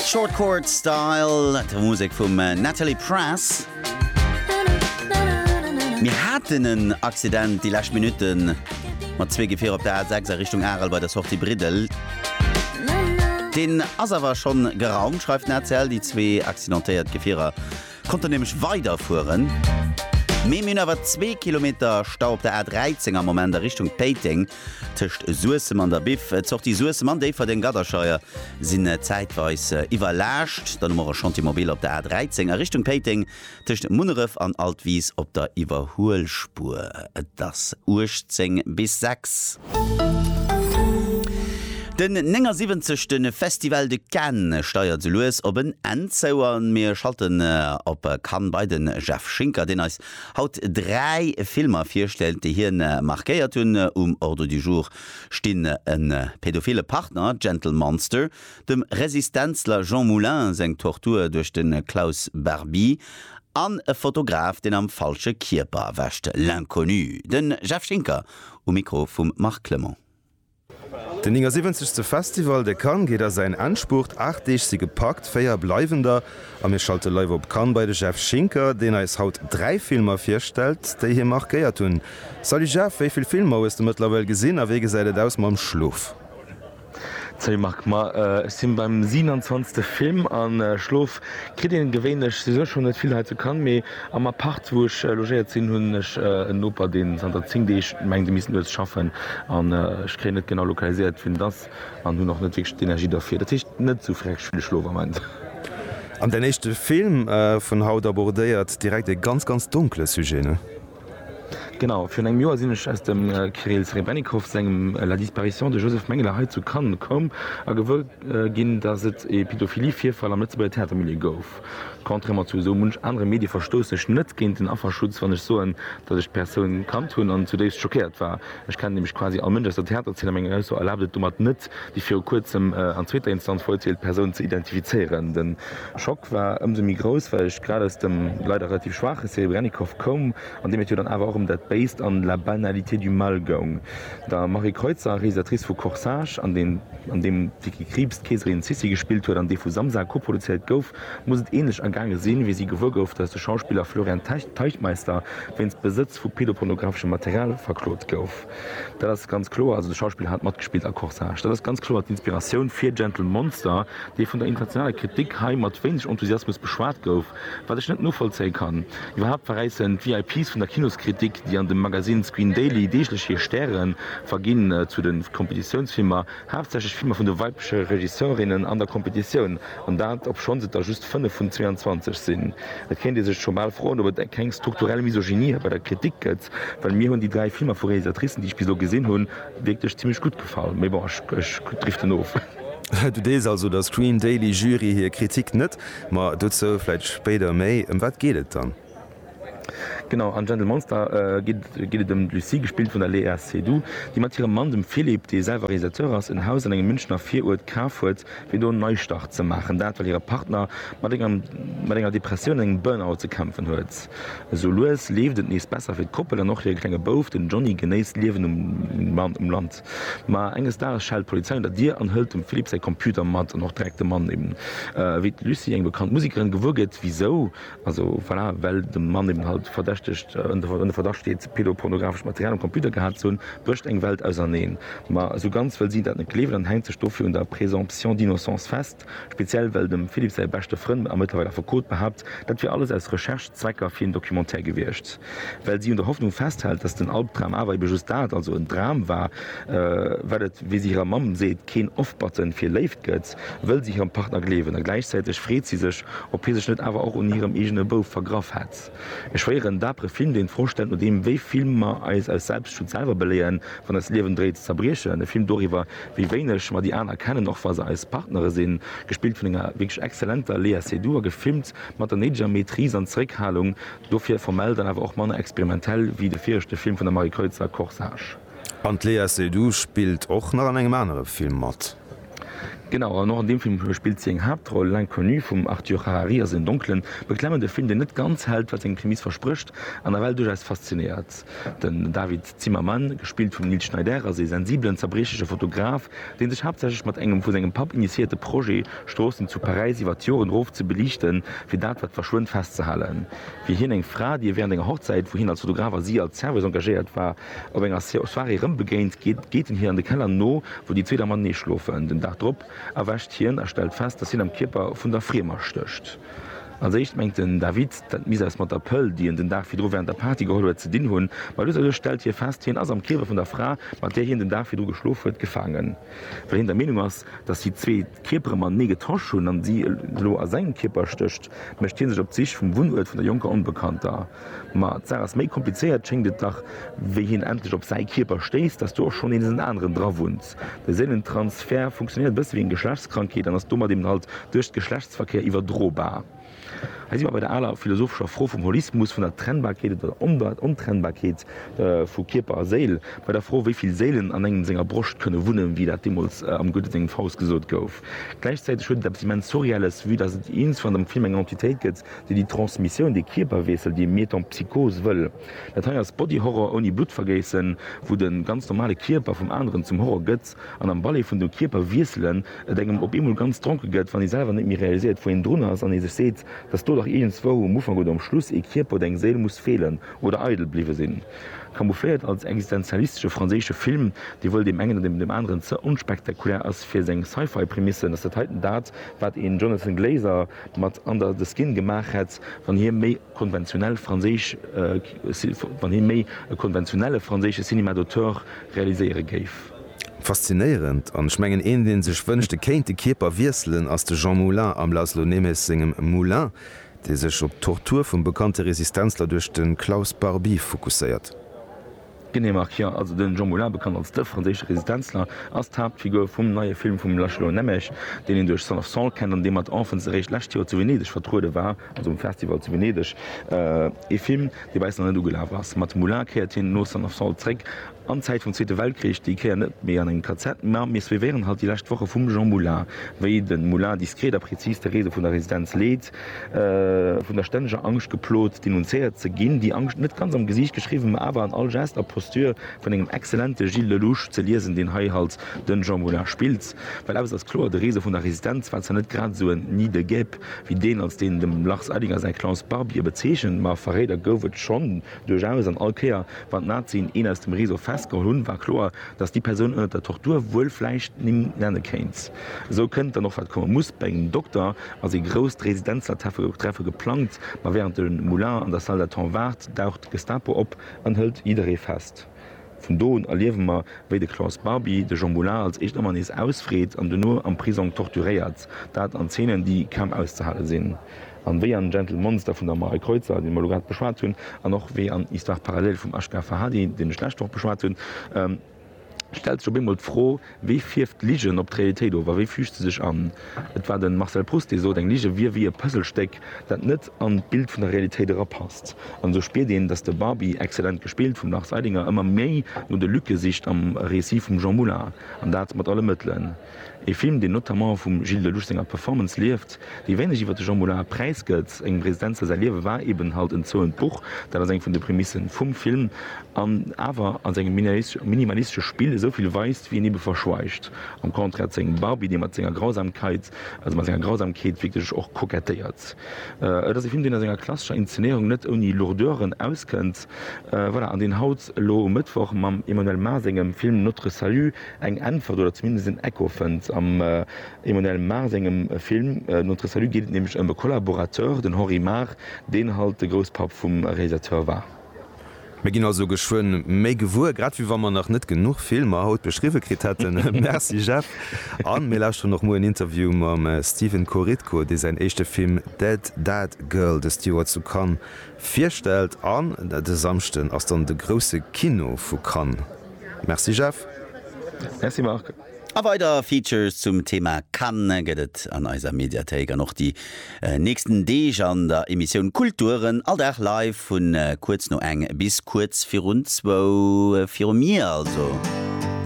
Short Chord Style, d'Musek vum Natalie Press. Mir haten en Accident déi lescht Minutten mat zwee Gefierer op der A6 a Richtung Arel bei der Sortie Briddel. Deen ass awer schonn geraumt, schreift den ACL. Déi zwee accidentéiert Gefierer konnten nämlech weiderfueren. Mee mir hunn awer zwee Kilometer Stau op der A13 am Moment a Richtung Péiteng. Tëscht Suessem an der Biff, d'Sortie Suessem an Déifferdeng, Gadderscheier, sinn zäitweis iwwerlaascht. Dann hu mer e Chantier mobile op der A 13 a Richtung Péiteng, tëscht Munneref an Altwis op der Iwwerhuelspuer. Et ass 18 bis 6. Den 79. Festival de Cannes steiert sou lues op en Enn zou a mir schalten op Cannes bei de Jeff Schinker, deen eis Haut dräi Filmer virstellt, déi hien markéiert hunn. Um Ordre du jour stinn e pädophile Partner, Gentle Monster, dem Resistenzler Jean Moulin seng Tortur duerch de Klaus Barbie an e Fotograf, deen am falsche Kierper erwächt, L'Inconnu. De Jeff Schinker um Mikro vum Marc Clement. Den 79. Festival de Cannes geet a säin Endspurt. Aacht Deeg si gepackt, véier bleiwen der. A mir schalte live op Cannes bei de Jeff Schinker, deen eis haut dräi Filmer virstellt, déi hie markéiert hunn. Salut Jeff, wéi vill Filmer hues de mëttlerweil gesinn a wéi gesäit et aus mam Schlof? Salut Marc, ma ech si beim 27. Film a schlof Kritt een gewéinlech souwisou schonn net vill hei zu Cannes, mee am Appart, wou ech logéiert sinn, hunn ech en Noper, dee zanter 10 Deeg mengt, e misst nuets schaffen. An ech kréien net genau lokaliséiert, wien et ass, an hunn och net wierklech d'Energie dofir. Dat heescht, net sou fresch wéi de Schlof am Ament. An däin éischte Film vun haut abordéiert direkt e ganz, ganz donkele Sujet, ne? Genau, virun engem Joer sinn ech aus dem Kirill Serebrennikov sengem La disparition de Joseph Mengele hei zu Cannes komm a gewuer ginn, datt et ee Pädophilie-Virfall am Lëtzebuerger Theatermilieu gouf. Contrairement zu esou munch anere Medie verstoussen ech net géint den Afferschutz, wann ech soen, datt ech d'Persoun kannt hunn an zudéifst schockéiert war. Ech kennen nämlech quasi all Mënsch aus der Theaterzeen a meng Ausso erlaabt et domat net, déi viru kuerzem an zweeter Instanz verurteelt Persoun ze identifizéieren. De Schock war ëmsou méi grouss, well ech grad aus dem leider relativ schwaache Serebrennikov koum, an deem et jo dann awer och ëm dat Béist an la banalité du mal goung. Der Marie Kreutzer, Realisatrice vu Corsage, an deen an deem d'Vicky Krieps d'Keeserin Sissi gespillt huet an dee vu Samsa koproduzéiert gouf, muss et ähnlech ergaange sinn, wéi si gewuer gouf, datt de Schauspiller Florian Teichtmeister wéinst Besëtz vu pedopornographeschem Material verklot gouf. Dat ass ganz kloer, also de Schauspiller hat matgespillt a Corsage. Dat ass ganz kloer d'Inspiratioun fir Gentle Monster, dee vun der internationaler Kritik hei mat wéineg Enthusiasmus beschwat gouf, wat ech net novollzéie kann. Iwwerhaapt veräissen d'VIPs vun der Kinoskritik, déi an dem Magasinn Screen Daily deeglech hir Stäre verginn, zu de Kompetitiounsfilmer haaptsächlech Filmer vun de weibleche Regisseurinnen an der Kompetitioun. An dat, obschonns et der just 5 vun 22 sinn. Et kéint ee sech scho bal froen, ob et keng strukturell Misogynie hei bei der Kritik gëtt, well mir hunn déi dräi Filmer vu Realisatricen, déi ech bis elo gesinn hunn, wierklech zimmlech gutt gefall. Mee bon, ech driften of. Du deels also der Screen Daily Jury hir Kritik net, ma dozou vläit spéider méi. Ëm wat geet et dann? Genau, an Gentle Monster geet et ëm d'Lucie, gespillt vun der Léa Seydoux, déi mat hirem Mann, dem Philippe, dee selwer Realisateur ass, en Haus an engem Münchener Viruert kaf huet, fir do en Neistart ze maachen. Dat, well hire Partner mat enger Depressioun an engem Burnout ze kämpfen huet. Esou lues leeft et nees besser fir d'Koppel an och hire klenge Bouf, den Johnny, genéisst d'Liewen um Land. Ma enges Dages schellt d'Polizei un der Dier an hëlt dem Philippe säi Computer mat an och direkt de Mann. Wéi d'Lucie eng bekannt Musekerin gewuer gëtt, wisou? Also voilà, well de Mann eben halt verdächtegt, ënner Verdacht steet, pedopornografescht Material um Computer gehat ze hunn, brécht eng Welt auserneen. Ma esou ganz wëll si dat net gleewen an hänkt sech dofir un der Présomption d'innocence fest, speziell well dem Philippe säi beschte Frënn a mëttlerweil Affekot behaapt, dat wier alles aus Recherche-Zwecker fir een Documentaire gewiescht. Well si un der Hoffnung festhält, datt den Albdram awer ebe just dat, also en Dram war, wat et, wéi si hirer Mamm seet, keen Off-Button fir Léift gëtt. wëll si hirem Partner gleewen, a gläichzäiteg freet si sech, ob hie sech net awer och un hirem eegene Bouf vergraff hätt. E schwéieren, dapere Film, deen d'Fro stellt, nodeem wéi vill mer eis aus Selbstschutz selwer beléieren, wann eist Liewen dréit ze zerbriechen. E Film doriwwer, wéi wéineg mer déi aner kennen, och wa se eis Partnere sinn. Gespillt vun enger wierklech exzellenter Léa Seydoux a gefilmt mat der néideger Maîtrise an Zeréckhalung, dofir formell dann awer och manner experimentell wéi de viregte Film vun der Marie Kreutzer, Corsage. An d'Léa Seydoux spillt och nach an engem anere Film mat. Genau, an och an deem Film spillt si eng Haaptroll. L'Inconnu vum Arthur Harari ass een donklen, beklemmende Film, deen net ganz hält, wat seng Prämiss versprécht, an nawell duerchaus faszinéiert. Den David Zimmerman, gespillt vum Nils Schneider, ass ee sensibelen, zerbriechleche Fotograf, dee sech haaptsächlech mat engem vu sengem Papp initiéierte Projet, Stroossen zu Paräis iwwer d'Joren erof ze beliichten, fir dat, wat verschwënnt, festzehalen. Wéi hien eng Fra, déi e wärend enger Hochzäit, wou hien als Fotograf a si als Serveuse engagéiert war, Op enger Soirée rëm begéint, geet en hir an de Keller no, wou déi zwee da matenee schlofen. Den Dag drop erwächt hien a stellt fest, dass hien am Kierper vun der Friemer stécht. Als éischt mengt den David, dat misst eppes mat der Pëll, déi en den Dag virdru wärend der Party geholl huet, ze dinn hunn. Ma lues a lues stellt hie fest, hien ass am Kierper vun der Fra, mat där hien den Dag virdru geschlof huet, gefaangen, well hien der Meenung ass, dass si zwee, Kierpere mat Mee getasch hunn an si elo a sengem Kierper stécht, mécht hie sech op d'Sich vum Wunnuert vun der jonker Onbekannter. Ma d'Saach ass méi komplizéiert, schéngt et dach. Wéi hien endlech op säi Kierper stéisst, ass do och schonn nees en aneren drawunnt. De Séilentransfert funktionéiert e bësse wéi eng Geschlechtskrankheet an ass domat eben halt duerch Geschlechtsverkéier iwwerdrobar. Hei si mer bei der aler philosophescher Fro vum Holismus, vun der Trennbarkeet oder der Ontrennbarkeet vu Kierper a Séil, bei der Fro, wéi vill Séilen an engem senger Broscht kënne wunnen, wéi dat deemools am Goethe sengem Faust gesot gouf. Gläichzäiteg huet et eppes immens Surreelles, vue dass et iergendwann am Film eng Entitéit gëtt, déi déi Transmissioun, dee Kierperwiessel, déi Metempsychos wëll. Dat hei ass Body Horror ouni Bluttvergéissen, wou de ganz normale Kierper vum aneren zum Horror gëtt. an am Ballet vun de Kierper wiesselen, et engem op eemol ganz dronke gëtt, wann ee selwer net méi realiséiert, wou een drun ass, an ee sech seet, dass do dach iergendzwou um Ufank oder um Schluss ee Kierper oder eng Séil muss feelen oder eidel bliwwe sinn. Camoufléiert als existenzialistesche franséische Film, dee wëll deem engen oder deem aneren ze onspektakulär ass fir seng Sci-Fi-Prämissen, ass dat heiten dat, wat een Jonathan Glazer mat Under the Skin gemaach hätt, wann hie méi konventionell franséisch, wann hie méi e konventionelle franséische Cinéma d'auteur realiséiere géif. Faszinéierend, an ech mengen een deen sech wënscht e kéint de Kierper wiesselen ass de Jean Moulin am László Németh sengem Moulin, dee sech op d'Tortur vum bekannte Resistenzler duerch de Klaus Barbie fokusséiert. Genee Marc, jo, also den Jean Moulin, bekannt als de franséische Resistenzler, ass d'Haaptfigur vum neie Film vum László Németh, deen een duerch Son of Saul kennt an dee mat Enfants eréischt lescht Joer zu Venedeg vertruede war. also um Festival zu Venedeg, ee Film, dee bei eis nach net ugelaf ass. Mat Moulin kéiert hien no Son of Salt zeréck an d'Zäit vum Zweete Weltkrich, déi Kéier net méi an engem KZ, mä mir suivéieren halt déi lescht Woche vum Jean Moulin, wéi de Moulin diskret a prezis d'Therese vun der Residenz leet, vun der stänneger Angscht geplot, denunzéiert ze ginn, déi Angscht net ganz am Gesiicht geschriwwen, mä awer an all Geste a Posture vun engem exzellente Gilles Lellouche ze liesen, deen hei halt de Jean Moulin spillt. Well eppes ass kloer, de Rezo vun der Resistenz war zwar net grad esou en Nid de guêpes wéi deen, als deen dem Lars Eidinger säi Klaus Barbier bezeechent, ma Verréider gouf et schonn duerchaus, an all Kéier, wann d'Nazien een aus dem Rezo festgeholl hunn, war kloer, datt déi Persoun ënnert der Tortur wuel vläicht d'Nimm nenne kéint. Esou kënnt dann och, wat komme muss, bei engem Dokter ass ee grousst Resistenzlertreffe geplangt, ma wärend de Moulin an der Salle d'attente waart, daucht d'Gestapo op an hëlt jidderee fest. Vun do un erliewe mer, wéi de Klaus Barbie de Jean Moulin als éischt ëmmer nees ausfreet an duerno am Prisong torturéiert, dat an Zeenen, déi kaum auszehale sinn, an wéi an Gentle Monster vun der Marie Kreutzer, déi mer elo grad beschwat hunn, an och wéi an Histoire parallèle vum Ashgar Farhadi, deen ech d'lescht Woch beschwat hunn, stellt sech op eemol d'Fro, Wéi fierft d'Ligen op d'Realitéit of a wéi füügt se sech an? Et war de Marcel Proust, dee sot, eng Lige wier wéi e Puzzlestéck, dat net an d'Bild vun der Realitéit erapasst. An esou spiert een, datt de Barbi, exzellent gespillt vum Lars Eidinger, ëmmer méi no de Lücke sicht am Récit vum Jean Moulin, an dat mat alle Mëttelen. E Film, deen notamment vum Gilles Dellouche senger Performance lieft. Wéi wéineg iwwer de Jean Moulin Präis gëtt, engem Residenz, dat säi Liewe war eben halt en zouent Buch, dat ass eng vun de Prämisse vum Film, an awer a sengem minimalistesche Spill esou vill weist, wéi en ebe verschweigt, am Contraire zu engem Barbie, dee mat senger Grausamkeit, also mat senger Grausamkeet wierklech och kokettéiert. Et ass e Film, deen a senger klassescher Inszenéierung net ouni Lourdeuren auskënnt, voilà, an deen haut elo um Mëttwoch mam Emmanuelle Mars sengem Film Notre Salut eng Äntwert oder zumindest en Echo fënnt am Emmanuel Mar sengem Film Notre Salut geet et nämlech ëm e Collaborateur, den Henri Mar, deen halt de Grousspapp vum Realisateur war. Mir ginn also geschwënn méi gewuer, grad wéi wa mer nach net genuch Filmer haut beschriwwe kritt hätten. Merci Jeff. A mir lauschteren och muer en Interview mam Steven Korytko, dee säin éischte Film Dead Dad Girl dëst Joer zu Cannes virstellt. An de Samschden ass dann de grousse Kino vu Cannes. Merci Jeff. Merci Marc. A weider Features zum Thema Cannes gëtt et an eiser Mediathéik an och déi nächsten Deeg an der Emissioun Kulturen, all Dag live vun kuerz no eng bis kuerz virun zwou viru Mier also.